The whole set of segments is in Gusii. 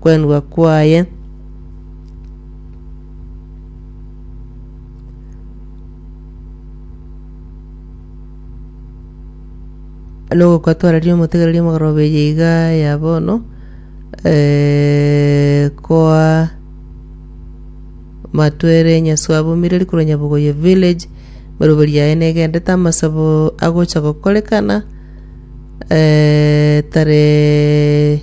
kwenwa kwaye. nogokatwarania omotegereria omogoroba eye iga ya bono eh, koa matwere nyaswa abumire rikoro nyabogoye village meroberi yaye negendete amasabo agocha gokorekana eh, tare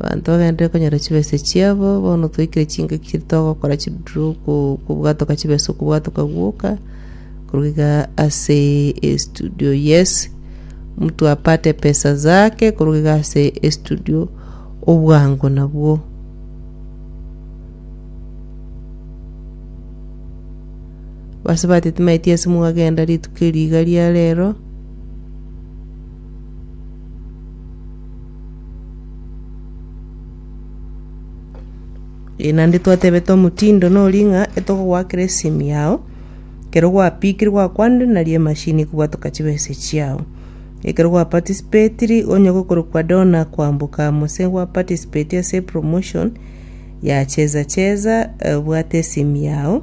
Abanto bagenderere konyora chibese chiabo, bono twaikire chingaki chiria togokora chiduru ko- kobwatoka chibese okobwatoka gwoka, korwa iga ase estudio yes, mtu apate pesa zake korwa iga ase estudio obwango nabwo. Base batete maeti ase mwagenda rituko eri iga ria rero. Ee, naende twatebete omotindo noria ng'a etogogoakera esimi yao, ekero gwapikire gwakwanire nari emashini ekobwatoka chibesa chiao. Ekero gwa participatiri onye gokorokwa donor kwamboka gose gwa participate ase epromotion ya cheza cheza, obwate esimi yao.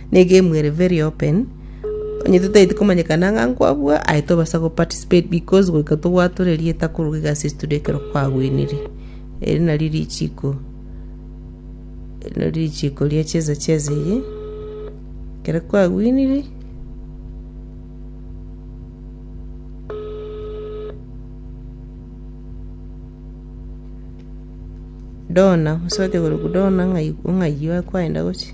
Negame ere very open onye totaeti komanyekana ng'a nkwabua aye tobasa go participate because goika tobwate ore rieta koruga egasi ase toria ekero kwagwenire eri nari richiko eri nari richiko ria cheza cheza eye ekero kwagwenire dona osobete koruga dona ng'ai- ng'ai kwaenda gochia